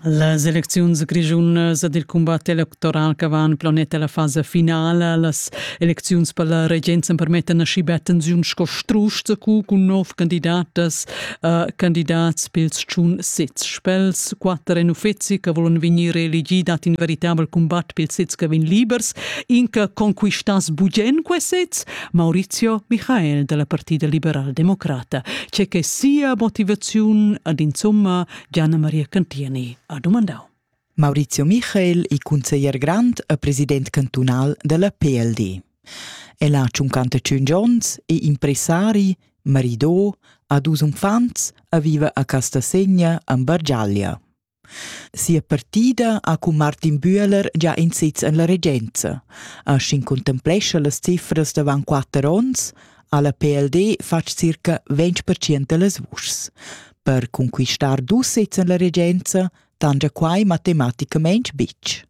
Las elecziuns grischunas ed il cumbat electoral che van planet alla fasa finala, las elecziuns per la regenza permettan aschi bia tensiun sco strusch zacu cun nov candidatas, uh, candidats pils tschun sez spels. Quatter en uffeci che volan vegnir reelegi dat in veritabel cumbat pils sez che vegn libers, in che conquistas bugen quei sez, Maurizio Michael dalla Partida liberal-democrata, che che sia motivaziun ad insomma Gianna Maria Cantieni ha domandau. Maurizio Michael è consiglier grand e president cantunal della PLD. El ha 55 onns, è impresari, maridò, ha dus unfants e vive a Castasegna, en Bargiaglia. Sia partida ha cun Martin Bühler già in sez en la regenza. A Schin contemplescha las cifras davant quatter onns ha la PLD fatg circa 20% da las vuschs. Per conquistar dus sezs en la regenza tangia quai matematicamain bitg.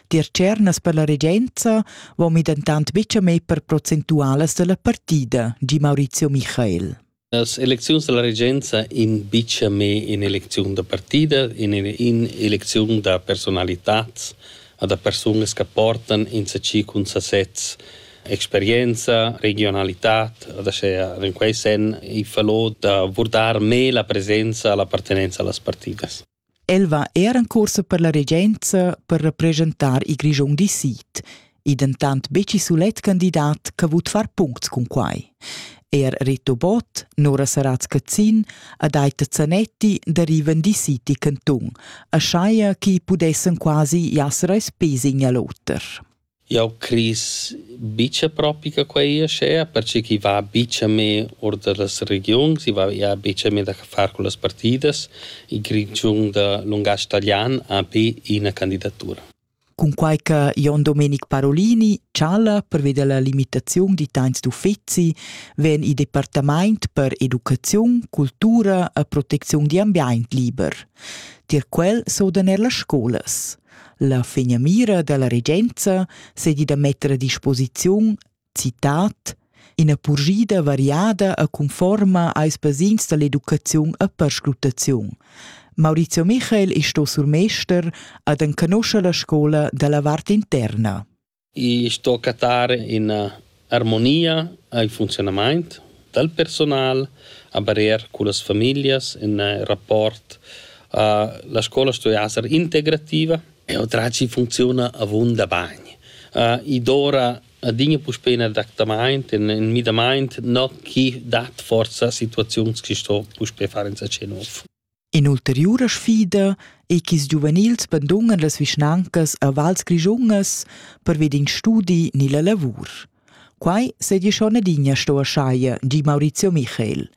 Tier cernas per la regenza vom i dentant betg a me per procentualas da la partida, di Maurizio Michael. Las elecziuns da la regenza imbicha me in'elecziun da partida, in'elecziun da personalitats o da persunas che portan insacchi cun sasezs experienza, regionalitat, aschia in quei sen i falò da vurdar me la presenza, l'appartenenza a las partidas. El va er en cuorsa per la regenza per representar il Grischun di sid. I dentant betg sulet candidat che vut far puncts cun quai. Er Rito Bott, Nora Saratz-Cazzin ad Aita Zanetti derivan di City Canton, a Scheier chi pudessen quasi jasser als pesi in lotter. Jau cris buca propi che quei aschia, perche ch'i va buca mê or dallas regiuns, i va ja buca mê da far cullas partidas. Il Grischun da lungatg talian ha be ina candidatura. Cunquai che Jon Domenic Parolini chala pervida la limitaziun d'italians d'uffeci, vegn il departament per educaziun, cultura e protecziun d'ambient liber. Tier quel sodan er las scolas. La finamira dalla regenza seigi da metter a disposiziun citat ina purschida variada e conforma als basins dall'educaziun e perscrutaziun. Maurizio Michael è sto surmester ad enconoscer la scola dalla vart interna. I sto cattar üna armonia al funziunamaint dal personal, a barier cullas famiglias, ün rapport. La scoula sto esser integrativa e otracci funcziuna avunda bagn. I dovra adina puspei ün adattamaint, ün müdamaint, no chi dat forsa situaziuns chi sto puspei far insatge nouv. In'ulteriura sfida ei ch'ils giuvenils bandungan las vischnancas a vals grischungas pervi d'in studi ni la lavur. Quai seigi schon adina sto aschaia, di Maurizio Michael.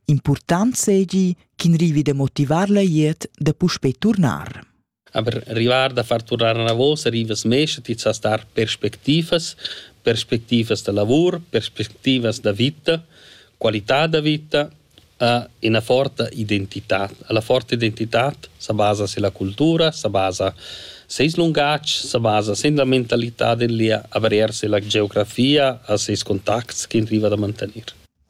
Impurtant seigi ch'in rivi da motivar la glieud da puspei turnar. Aber rivar da far turnar anavos rivas mescha ti sa star perspectivas, perspectivas da lavur, perspectivas da vita, qualità da vita, a ina forta identitad. La forta identitad sa basa silla cultura, sa basa seis lungatg, sa basa sin la mentalità del lia, avrir silla geografia a seis contacts ch'in riva da mantenir.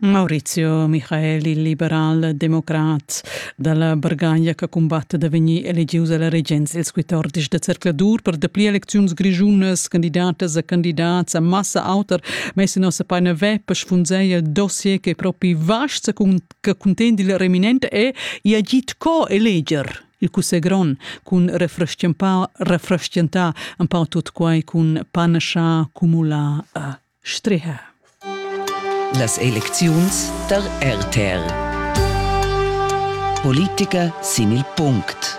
Maurizio Michael, il liberal democrat dalla Bargaglia che cumbatta da vegnir elegius alla regenza ils quatordici da zercladur per dapli elecziuns grischunas, candidatas e candidats a massa auter messa nossa paina web per sfunzeier dossier che propi vast che contegn il reminente è i agit co eleger il cussegl grond cun refrestgentà un pau tut quai cun panascha cumulà a Striha. Las elecziuns tar RTR. Politica sin il punct.